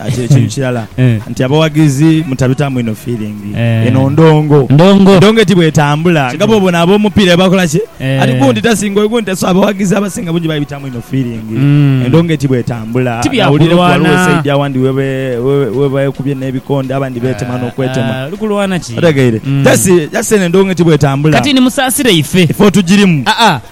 Ati ekintu kirala nti abawagizi mutabitamu inho feeling. Eno ndongo. Ndongo. Endongo eti bw'etambula nga bw'obona ab'omupiira bwe bakola ki? Ati gundi tasinga oyo gundi ta. So abawagizi abasinga bungi babitamu inho feeling. Endongo eti bw'etambula Ti bya nawulireku kulwana. ghaligho esaidi awandi we be, we, we beekubye n'ebikonde abandi beetema n'okwetema. Ah, oli kulwana ki? Otegeire? Just, just eno endongo eti bw'etambula. Kati ni musaasire ife. Ife otugirimu. Aa,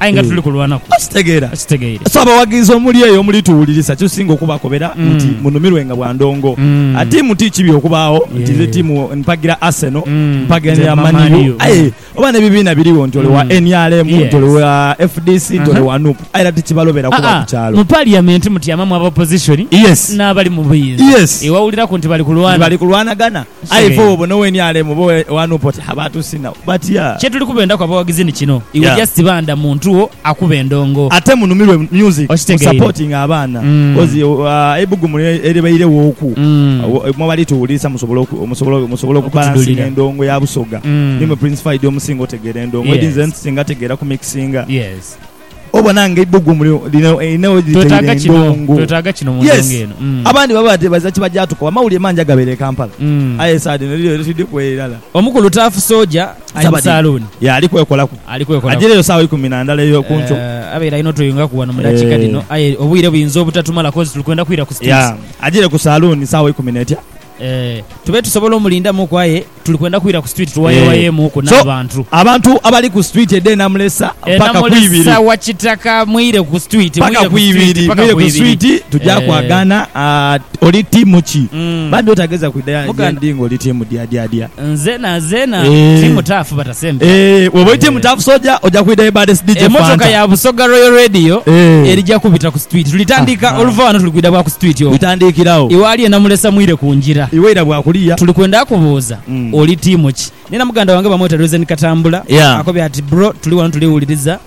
aye nga tuli kulwanaku. Okitegeera? Okitegeire. So abawagizi omuli eyo omuli tuwulirisa kisinga okubakobera nti munumirwenga bwa ndongo. A tiimu ti kibi okubaagho nti nze tiimu mpagira Arsenal, mpaganira Man U, aye oba n'ebibiina birigho nti ole wa nrm, nti ole wa fdc, nti ole wa nup aye era tikibalobera kuba ku kyalo. Mu Parliament mutyamamu aba opposition n'abali mu buyinza. Wewawuliraku nti bali kulwana. Nti bali kulwanagana. Aye ife woba no weni alemu oba wanuupa oti ha batusina batya. Kyetuli kubendaku abawagizi ni kino, iwe Yeah. just ba nda muntu wo akuba endongo. Ate munumirwe music, mu Okitegeire. supporting abaana Mm. coz uh, eibugumu lye- eribairewoku Mm. uh, mwebali tuwulirisa musobola oku- musobola musobola okubalansinga Okutudulira. endongo ya busoga Mm. nimwe Prince Faida omusinga otegeera endongo edi Yes. nze nsinga tegeera ku mixinga Yes. Obona nga eibbugumu lino lirina we litaire endongo. Yes, abandi baba bateebaza kibagyatuka wa mawulire mangi agabeera e Kampala aye esaa dhino liryo lye tudhi ku eirala. Omukulu Taafu Soja ali mu saluuni. Ye ali kwekolaku. Ajireyo saawa ikumi na ndala ey'oku nkyo. Abaire alina otweyungaku ghano mu dakiika dhino aye obwire buyinza obutatumala kozi tuli kwenda kwira ku siteegi. Ajire ku saluuni saawa ikumi n'etya. Tube tusobola omulindamuku aye tuli kwenda kwira ku street tuwayewayemuku n'abantu. Abantu abali ku street edha Enamulesa paka ku ibiri. Enamulesa wa Kitaka mwire ku street. Paka ku ibiri mwire ku street tuja kwagana oli tiimu ki? Bambi otageza kwidha ghendi ng'oli tiimu dyadyadya. Nze nazena ti mutaafu but sembya. Eeh woba oidhye mutaafu soja oja kwidha ye baddest DJ Fanta. Emotoka ya Busoga Royal Radio erija kubita ku street. Tulitandika oluva ghano tuli kwidha bwa ku street okwo. Litandikira agho. Iwe ali e Namulesa mwire ku ngira. Iwe ira bwa kuliya. Tuli kwenda kubuuza oli tiimu ki? Nina muganda wange bamweta Reason Katambula akobye ati bro tuli ghano tuli wuliriza.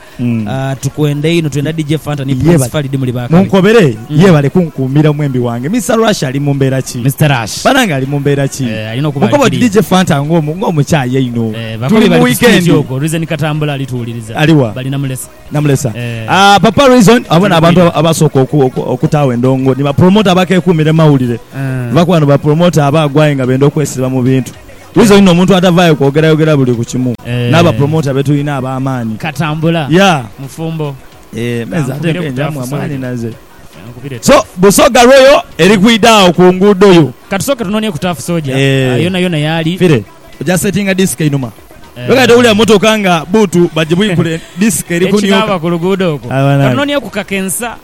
Tukwenda inho twenda DJ Fanta ni Prince Fally di muli ba kale. Munkobere yebale kunkuumira omwembi wange. Mister Rush ali mu mbeera ki? Mister Rush. Banange ali mu mbeera ki? Eeh alina okuba ali Munkoba oti clear. DJ Fanta nga omu nga omukyayi einho. Eeh bakoobi Tuli mu bali ku stage weekend. okwo. Reason Katambula ali tuwuliriza. Ali wa? Bali Namulesa. Namulesa. Eeh. Aah Papa Reason abo Tuli n'abantu bwire. abasooka oku oku okutaagho endongo. Ni ba promoter abakekuumira mu mawulire. Eeh. Lwakuba bano ba promoter abaagwa aye nga benda okwesiba mu bintu. Wizo inho omuntu atavaayo kwogerayogera buli ku kimu n'abapromoota be tulina ab'amaani. Katambula, mufumbo. Eeh me nze ate nkenja mwa mwanhinaze. So Busoga Royal eri kwidha agho ku nguudo yo. Ka tusooke tunoonie ku Turf Soldier yonayona y'ali. Fire oja settinga disiki einhuma. Gwe kati towulira mmotoka nga bbuutu bagibwikula disiki eri kunioka. Ekinaaba ku luguudo okwo. Ka tunoonieku kakensa.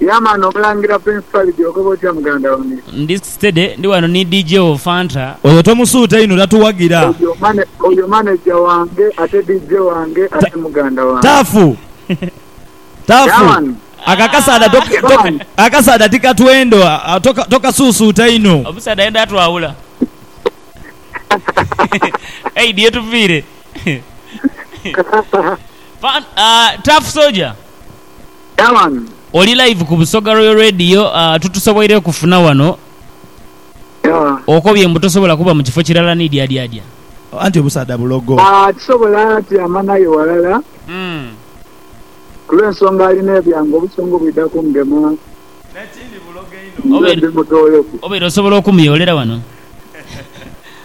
Yeah man omulangira prince Falidhi ogoba otya muganda wange. Ndi steady ndi wano ni DJ wo Fanta. Oyo tomusuuta inho tatuwagira. Oyo manager wange ate DJ wange ate muganda wange. Taafu taafu ako akasaadha ako akasaadha tikatwendo tokasuusuuta inho. Omusaadha ayenda atwawula Aid yetuviire Taafu soja. Dawan. Oli live ku Busoga Royal Radio aah tutusoboire kufuna wano Yeah. okobye mbu tosobola kuba mukifo kirala nidyadyadya. Anti obusaadha bulogo. Aah tisobola tyama naye walala Umm. kulwensonga alina ebyange obusungu bwidha kungema Nekindi bulogo einho. nze Obeere ndi mutoyofu. obeere osobola okumuyolera wano.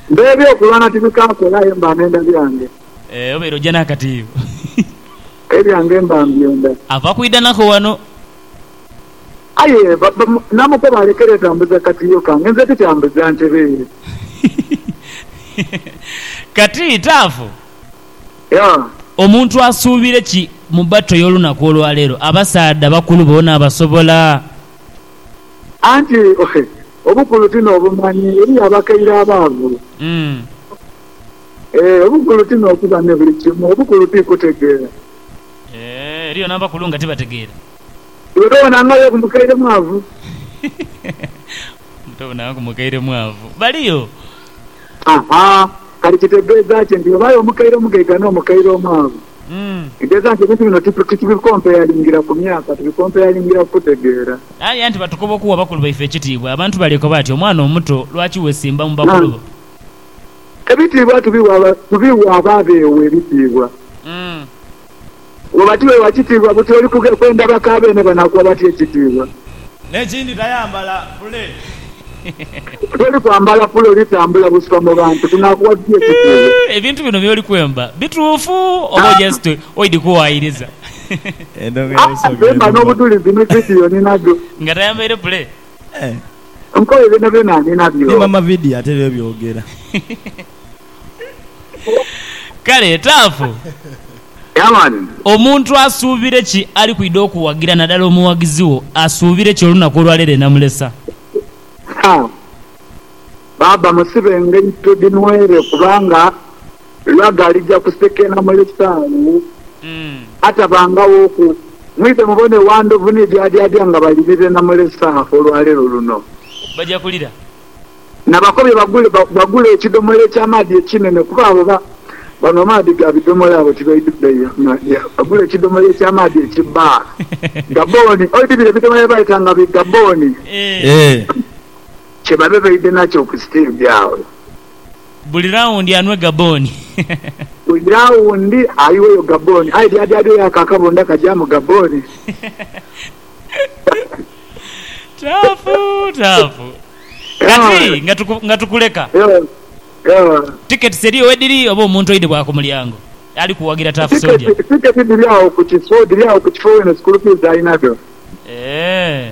Mbe ebyokulwana tibikakola aye mba nenda byange. Eeh obeere oja nakatiyo. Ebyange mba mbyenda. Ava kwidha nako wano. Aye namukoba alekere dha mbuza katiyo kange nze tikyambuza ntereere. Kati Taafu, omuntu asuubire ki mu battle y'olunaku olwaleero? Abasaadha bakulu boona abasobola? Anti obukulu ti n'obumanyi, eriyo abakaire abaavu. Eeh obukulu ti n'okuba ne buli kimu, obukulu ti kutegeera. Eeh eriyo n'abakulu nga tibategeera. Iwe tobona nga Yobu mukaire mwavu? Mbu tobona nga mukaire mwavu? Baliyo. Aha, kale kitegeeza ki nti ghabaagho omukaire omugaiga n'omukaire omwavu? Kitegeeza nti ebintu bino titubikompeyalingira ku myaka, tubikompeyalingira ku kutegeera. Aye anti batukoba okuwa bakulu baife ekitiibwa. Abantu baleekoba ati, Omwana omuto, lwaki weesimba mu bakulu bo? Ebitiibwa tubiwa abo abeewa ebitiibwa. Bw'oba tiweewa kitiibwa, buti oli kuge kwenda baka beene banakuwa batya ekitiibwa? N'ekindi tayambala pule. Buti oli kwambala pule oli tambula busika mu bantu, tunakuwa tutya ekitiibwa? Ebintu bino by'oli kwemba bituufu oba just oidhi kuwaayiriza? Aa, bemba n'obudhulizi ni vidiyo ninadho. Nga tayambaire pule, Nkoye byonabyona ninabyo. Kale Taafu, omuntu asuubire ki ali kwidha okuwagira nadala omughagizi wo asuubire ki olunaku olwaleero enamulesa? Baaba musibe engaito dhinwere kubanga. Lwa ghalija kusekeena mu lisaalu atabangawoku, mwidhe mubone wa ndhovu ni dyaadyaadya nga bali birena mu lisaalu olwa leero luno. Baja kulira. Na bakobye bagule ekidomola eky'amaadhi ekinene, kuba abo banhwa amaadhi ga bidomola abo tibaidhu beeya. Bagule ekidomola eky'amaadhi eki bar gabooni, oidhibire ebidomola bye baayeta nga bi gabooni, kye babe baidhe nakyo ku siteegi agho. Buli rawundi anwe gabooni. Buli rawundi ayiweyo gabooni. Aye dyaadyaadyo yo ako akabunda kajaamu gabooni. Taafu taafu. Kati nga nga tukuleka, tiketisi eriyo wediri oba omuntu oidhi bwa ku mulyango ali kuwagira Taafu Soja? Tiketi dhiri agho ku kifo, dhiri agho ku kifo wene, sikulu fiizi alina dho. Eeh.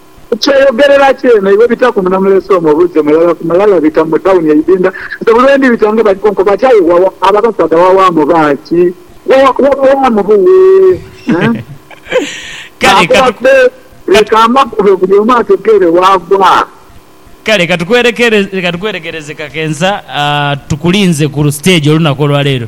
Ku kyeyogerera kyene, iwe bitaku Munamulese omwo obuuze mulala ku mulala bita mu tawuni eidinda. Nze buli lwe ndibita nga bali kunkoba ati, Aye wawa, abo abasaadha wawaamu baaki? Wawa, wabawaamu buwe? Naakoba bbe, leka amakube buli omu ategeere waava. Kale ka tukwerekereze kakensa, tukulinze ku siteegi olunaku olwaleero.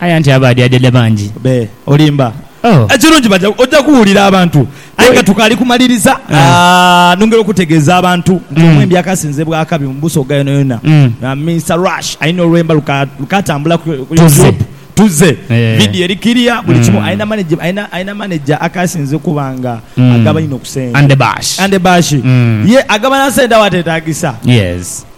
Aye anti abaadyadya bangi. Be. Olimba. Oh. Ekirungi baja, oja kuwulira abantu. Aye nga tukaali kumaliriza, Ah. nongera okutegeeza abantu nti omwembi akasinze bw'akabi mu Busoga yonayona, Mm. Mister Rush, alina olwemba luka, lukatambula ku ku Tuzze. YouTube, Tuzze. Eh. Vidiyo eri kiriya, buli kimu. Mm. Alina manage, alina, alina manager akasinze okuba nga Mm. agaba inho ku sente. Andebash. Andebash. Mm. Ye agaba na sente awateetaagisa. Yes.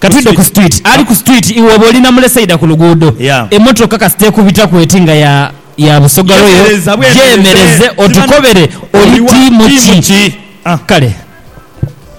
Ka twidhe ku street. Ali ku street iwe oba oli na mule saidha ku luguudho. Emotoka kasita ekubitaku eti nga ya ya Busoga Royal, gyemereze otukobere oli tiimu ki? Kale.